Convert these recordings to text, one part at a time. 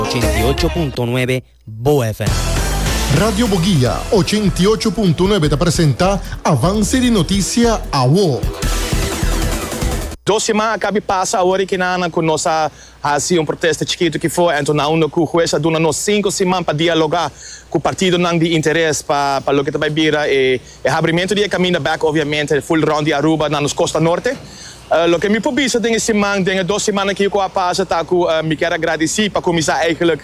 ochenta i ocho punto nuebe Boa FM. Radio Boguia ochenta i ocho punto nuebe ta presenta Avance di Noticia Awo. Dos siman a kabi pasa awor e kinanan ku nos a hasi un protesta chikitu ki for anto nan unda ku hues a duna nos sinku siman pa dialoga ku partidonan di interes pa pa loke ta bai bira e E habrimentu di e kaminda bèk obviamente ful rònt di Aruba na nos Kosta Norte. Loke mi por bisa den e siman, den e dos siman aki ku a pasa ta ku mi kier a gradisí pa kuminsá eigentlik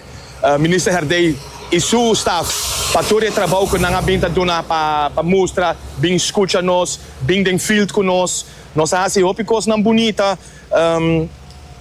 Minister Herdey i su staf pa tur e trabou ku nan a bin ta duna pa pa mustra, bin skucha nos, bin den field ku nos. Nos a hasi hopi kosnan bunita.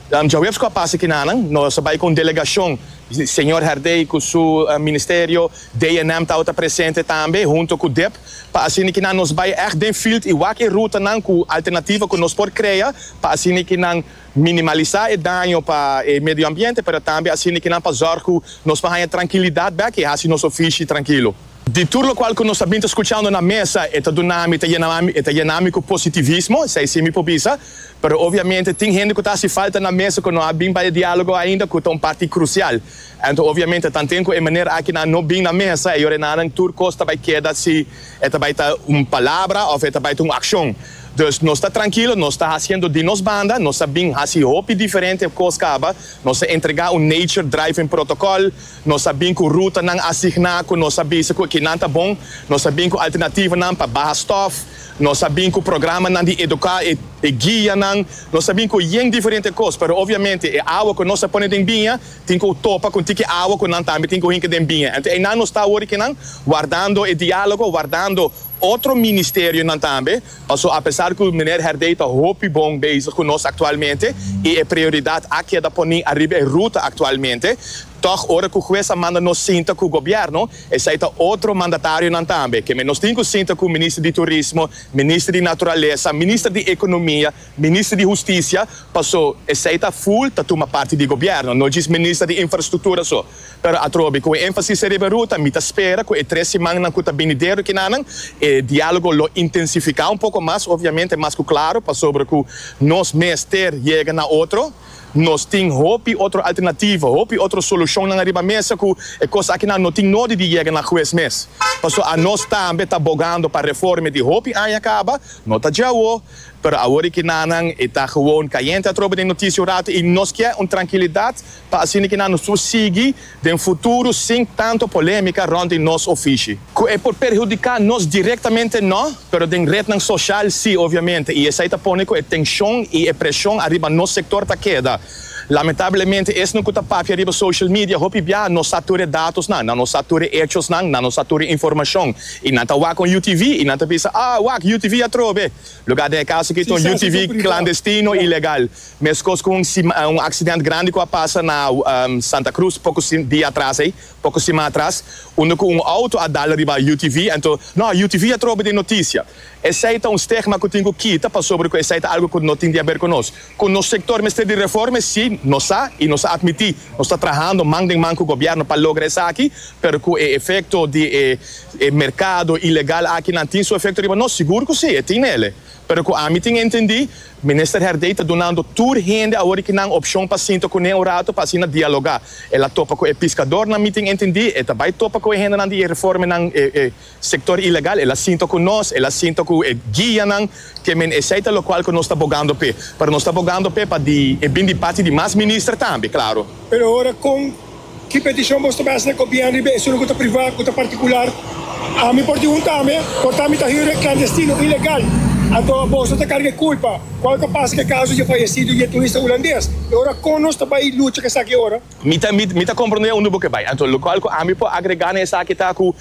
Djaweps ku a pasa kinanan nos a bai ku un delegashon, señor Herdey ku su ministerio, DNM tabata presente tambe hunto ku dep, pa asina kinan nos bai ègt den field i wak e rutanan ku alternativa ku nos por krea pa asina kinan minimalisá e daño pa e medio ambiente pero tambe asina kinan pa zòrg ku nos por haña trankilidat bèk i hasi nos ofishi trankilo. Di tur lokual ku nos a bin ta skuchando na mesa e ta duna mi, e ta yena mi ku positivismo, esei si mi por bisa. Pero obviamente tin hende cu ta haci falta na mesa cu no a bin pa e dialogo ainda cu ta un parti crucial. Anto obviamente tanten cu e manera aki nan no bin na mesa e yorenanan tur cos ta bay keda si e ta bay ta un palabra of e ta bay ta un accion. Dus nos ta trankilo, nos ta haciendo di nos banda, nos a bin haci hopi diferente cos caba, nos a entrega un nature-driven protocol, Nos a bin ku rutanan asigná ku nos a bisa ku kinan ta bon. Nos a bin ku alternativanan pa baha stòf. Nos a bin ku programanan di eduká e e guianan. Nos a bin ku yen diferente kos, pero obviamente e awa ku nos a pone den biña tin ku topa kon tin ki awa ku nan tambe tin ku hinka den biña. Anto einan nos ta awor di kinan wardando e diálogo, wardando. Otro ministerionan tambe, paso apesar cu Meneer Herdey ta hopi bon bezig cu nos actualmente y e prioridad a keda poni ariba e ruta actualmente, tog ora cu Hues a manda nos sinta cu Gobierno, esai ta otro mandatarionan tambe, keme nos tin cu sinta cu Minister di Turismo, Minister di Naturalesa, Minister di Economia, Minister di Husticia, paso esai ta full ta tuma parti di Gobierno, no djis Minister di Infrastructura so. Pero atrobe cu e enfasis a riba ruta, mi ta spera cu e tres simannan cu ta binidero ekinan, e dialogo lo intensifica un poco mas, obviamente mas cu claro, pasobra cu nos mester yega na otro. Nos tin hopi otro alternativo, hopi otro solucionnan ariba mesa cu e cos akinan no tin nodi di yega na huez mes. Paso a nos tambe ta bogando pa reforme di hopi aña caba, no ta djawo, pero awor ekinan e ta gewoon cayente atrobe den noticia un rato y nos kier un trankilidad, pa asina ki nan nos tur sigui den futuro sin tanto polemica rond di nos ofishi. Cu e por perhudica nos directamente no, pero den rednan social si obviamente y esai ta pone cu e tension y e presion ariba nos sector ta keda. Lamentablemente esnan cu ta papia riba social media hopi bia no sa tur e datosnan, nan no sa tur e hechosnan, nan no sa tur e informacion y nan ta wak con UTV y nan ta bisa, ah wak UTV atrobe, lugar den e caso aki ton UTV clandestino, ilegal. Mescos cu un accident grandi cu a pasa na Santa Cruz poco dia atras ey, poco sima atras, unda cu un auto a dal riba UTV, anto no, UTV a trobe den noticia. Esey ta un stigma cu tin cu kita pasobra cu esey ta algo cu no tin di haber cu nos. Cu nos sector mester di reforme? Si, nos sa y nos a admiti. Nos ta trahando man den man cu gobierno pa logra esaki, pero cu e efecto di e mercado ilegal aki nan tin su efecto riba nos? Sigur cu si, e tin nele. Pero cu ami tin entendi, Minister Herdey ta dunando tur hende awor ki nan opshon pa sinta kuné un rato pa asina dialogá. El a topa ku e piskadornan mitin e ntindí, e ta bai topa ku e hendenan di e reformenan, e e sektor ilegal, el a sinta ku nos, el a sinta ku e guianan, ke men esei ta lokual ku nos ta bogando p'e. Pero nos ta bogando p'e pa di e bin di parti di mas minister tambe, klaru. Pero ora kon. Ki petishon bo stop hasi na kopian riba esun ku ta privá, ku ta partikular? Ami por di un tambe, por tambe ta hüre klandestino, ilegal. Anto bos no ta karga e kulpa. Kual ta pasa ku e kaso di e fayesido i e turista hulandes? E ora kon nos ta bai lucha ku esaki e ora? Mi ta mi ta kompronde unda bo ke bai. Anto lokual ku ami por agregá na esaki ta ku.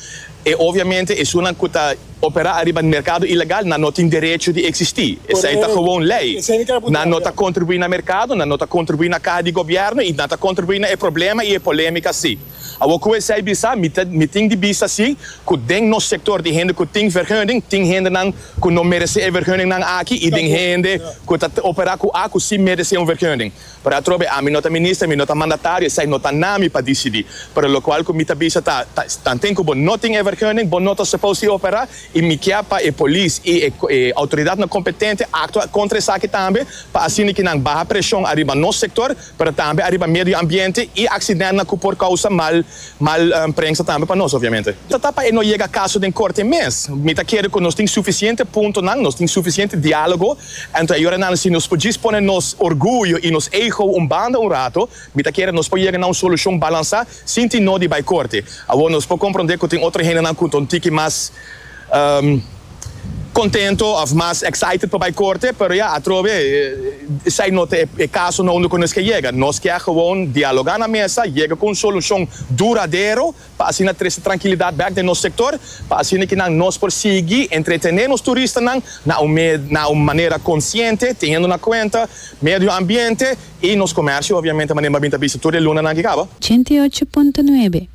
E obviamente esunnan cu ta opera ariba un mercado ilegal nan no tin derecho di existi. Esey ta gewoon ley. Nan no ta contribui na mercado, nan no ta contribui na caha di gobierno y nan ta contribui na e problema y e polemica si. Awor cu esey bisa, mi ta mi tin di bisa si cu den nos sector di hende cu tin vergunning tin hendenan cu no merece e vergunning nan aki y den hende cu ta opera cu a cu si merece un vergunning. Pero atrobe ami no ta minister, mi no ta mandatario, esei no ta na mi pa disidí. Pero lokual ku mi ta bisa ta, ta, nan tin ku bo no tin e vergunning, bo no ta supos di operá, i mi kier pa e polis i e, e outoridatnan kompetente aktua kontra esaki tambe, pa asina ke nan baha preshon ariba nos sektor, pero tambe ariba medio ambiente i aksidentnan ku por kousa mal. Mal prensa tambe pa nos obviamente. Ta ta pa e no yega kaso den korte mes. Mi ta kere ku nos tin sufisiente puntonan, nos tin sufisiente diálogo. Anto e yorenan si nos por djis pone nos orguyo i nos ego un banda un rato, mi ta kere nos por yega na un solushon balansá sin tin nodi bai korte. Awor nos por komprondé ku tin otro hendenan ku ta un tiki mas. Contento of mas excited pa bay corte, pero ya atrobe esay no ta e caso no unda cu nos ke yega. Nos kier gewoon dialoga na mesa, yega cu un solucion duradero pa asina trece trankilidad bek den nos sector, pa asina kinan nos por sigui entretene nos turistanan na un na un manera consciente, teniendo na cuenta medio ambiente y nos comercio obviamente, manera mi a bin ta bisa tur e lunanan ki caba. Ochenta i ocho punto nuebe.